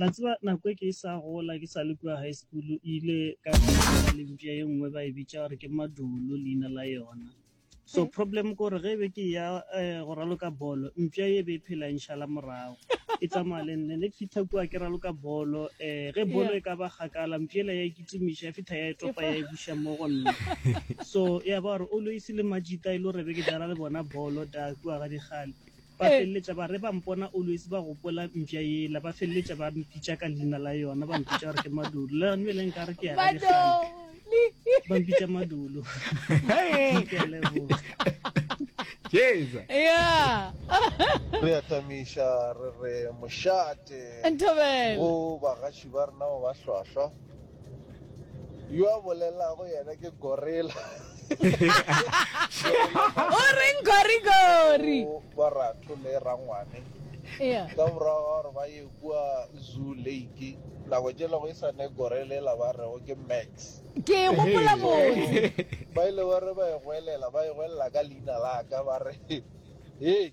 La tseba nako e ke e sa gola ke sa le kua high school e ile ka ka le mpša ye nngwe ba e bitša gore ke madulo leina la yona so problem ke gore ge e be ke ya eh, go raloka bolo mpša ye e be e phela e nšala morago e tsamaya le nne ne ke fitlha kua ke raloka bolo um ge bolo Yeah. e ka ba kgakala mpšela ya ikitimiša ya fitlha ya e topa ya e buša mo go nna so ya ba gore always le majita e le gore be ke dala le bona bolo da kua ga dikgale Ba feleletša ba re ba mpona always ba gopola mpša yela, ba feleletša ba mpitša ka leina la yona, ba mpitša gore ke Madulu. Le gane bjale nka re ke ya ga dikgang, ba mpitša Madulu. Ke a leboga. Jeza. ya re a tamiša re re mošate Nthabele. go bagaši ba rena ba ba hlwahlwa yo a bolelago yena ke gorilla o reng gorigori ba ratho le rangwane ka morago ga gore ba ye kua zoo lake nako jelego e sane gorele la ba rego ke max ke e gopola botse ba ile ba re ba e gwelela ba e gwelela ka leina la ka ba re ee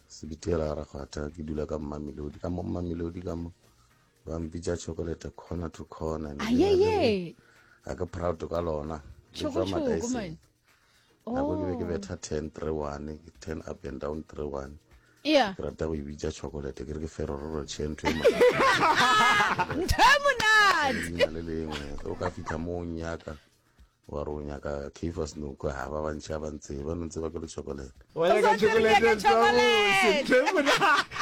Sebitiela a re kgwatha ke dula ka mmamelodi ka mo mmamelodi ka mo ba mpitša chocolate corner to corner ayeye a ke proud ka lona chokochoko man nako ke be ke oh. betha ten three one ke ten up and down three one yeah ke rata go e bitša chocolate ke re ke ferororo chento e ntho e monate le lengwe o ka fitlha mo o nyaka wa re o nyaka keifa senoko ga ba bantšha ba ntse ba nontse ba ke le chocolate wa nyaka chocolate sa bose themona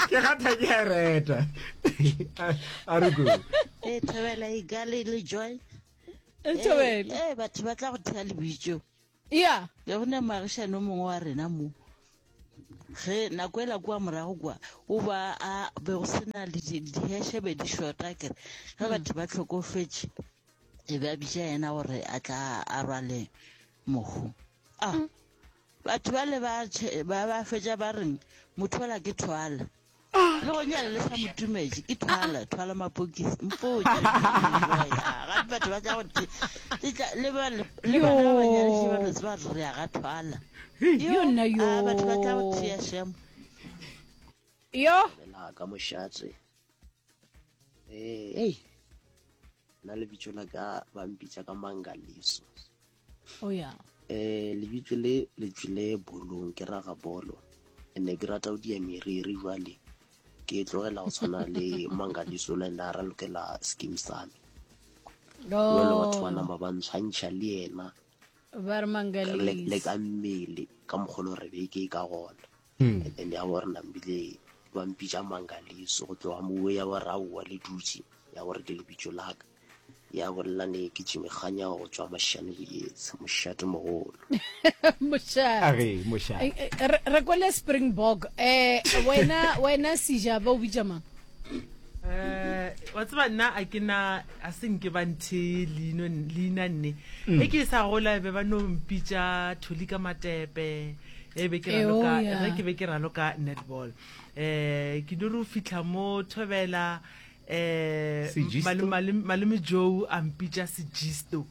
ke gatha ke a reta a re ko e thobela e gale le joy e thobela e batho ba tla go thea lebitso ya le go ne magishano mongwe wa rena mo ge nako ela kwa morago kwa o ba a be go sena le diheshebe di shota kere ge batho ba tlhokofetše e be a bitša yena gore a tla a rwale mohu a ah, batho ba le ba ba fetša ba reng mothola ke thwala ah. le go nyale le sa motumetse ke thwala ah, thwala mapokisi mpoja gape batho ba tla gote le bana ba nyalese ba lotse ba rea ga thwala batho ba tla go thea shemo yo ka mošatse ee na lebitso la ka ba mpitsa ka mangaliso o oh, ya um lebitso le le tswile bolong ke raga bolo and ke rata go dia meriri jwale ke tlogela go tshwana le mangaliso le nda ra lokela skim same jalo batho ba nama ba ntshwantšha le ena le ka mmele ka mokgolo re be ke ka gona hmm. and then ya gore nambile ba mpitša mangaliso go tloga mowe ya gore aowa le dutše ya gore ke lebitso laka ya bolela ne ke tšimekganya go tswa mošane boetse mošate mogolo mošate re kwele springbok um wena wena sejaba o bitša mang Eh, wa tseba nna a ke na a se nke ba nthe leino leina nne e ke e sa gola be ba no mpitša tholi ka matepe e be ke raloka Eoya. ge ke be ke raloka netball um ke no re o fitlha mo thobela um Sejisto. malome joe a mpitša sejisto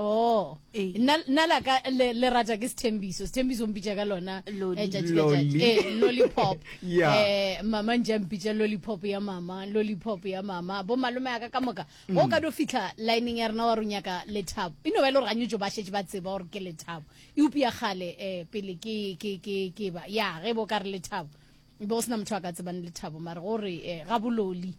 Oh, eh. nna la ka le, le rata ke sethembiso sethembiso mpitša ka lona eh, eh, lollipop eh, mama nja mpitša lollipop ya mama lollipop ya mama bo malome ya ka ka moka mm. o ka do fitlha lineng ya rena wa ro nyaka lethabo e no ba e le gore ganyetso ba šetse ba tseba gore ke lethabo eupša ya kgale um pele ke ba ya ge bo ka re lethabo bo go sena motho a ka tsebang lethabo mare gore um gabololi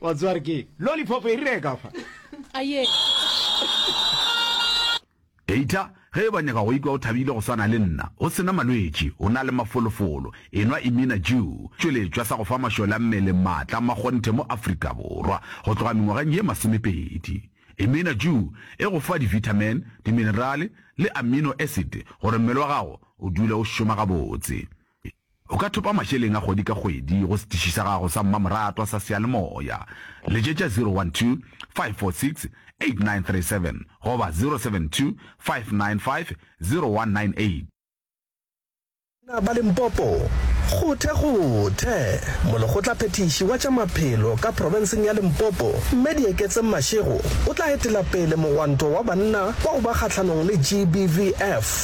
wa tswa re ke lollipop e rile ka fa aye eita ge e ba nyaka go ikwa o thabile go swana le nna o sena malwetši o na le mafolofolo enwa imina jew tšweletšwa sa go fa mašole a mmele maatla ma kgonthe mo afrika borwa go tloga mengwageng ye masomepedi imina jew e go fa divitamin diminerale le amino acid gore mmele wa gago o dule o šoma gabotse O ka thopa mašeleng a kgwedi ka kgwedi go setiši sa gago sa mmamoratwa sa seyalemoya. Letšetša 012 546 8937 goba 072 595 0198. Banna ba Limpopo, kgothe kgothe! Molekgotlaphethiši wa tša maphelo ka profenseng ya Limpopo, Mme Dieketseng Mashego o tla etela pele mogwanto wa banna wa go ba kgahlanong le GBVF.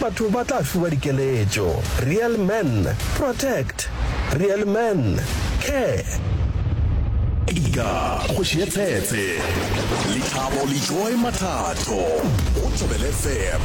Batho ba tla fiwa dikeletšo. Real men protect. Real men care. Ika kgoši ye tsetse. Lethabo le joy mathato go Jobel FM.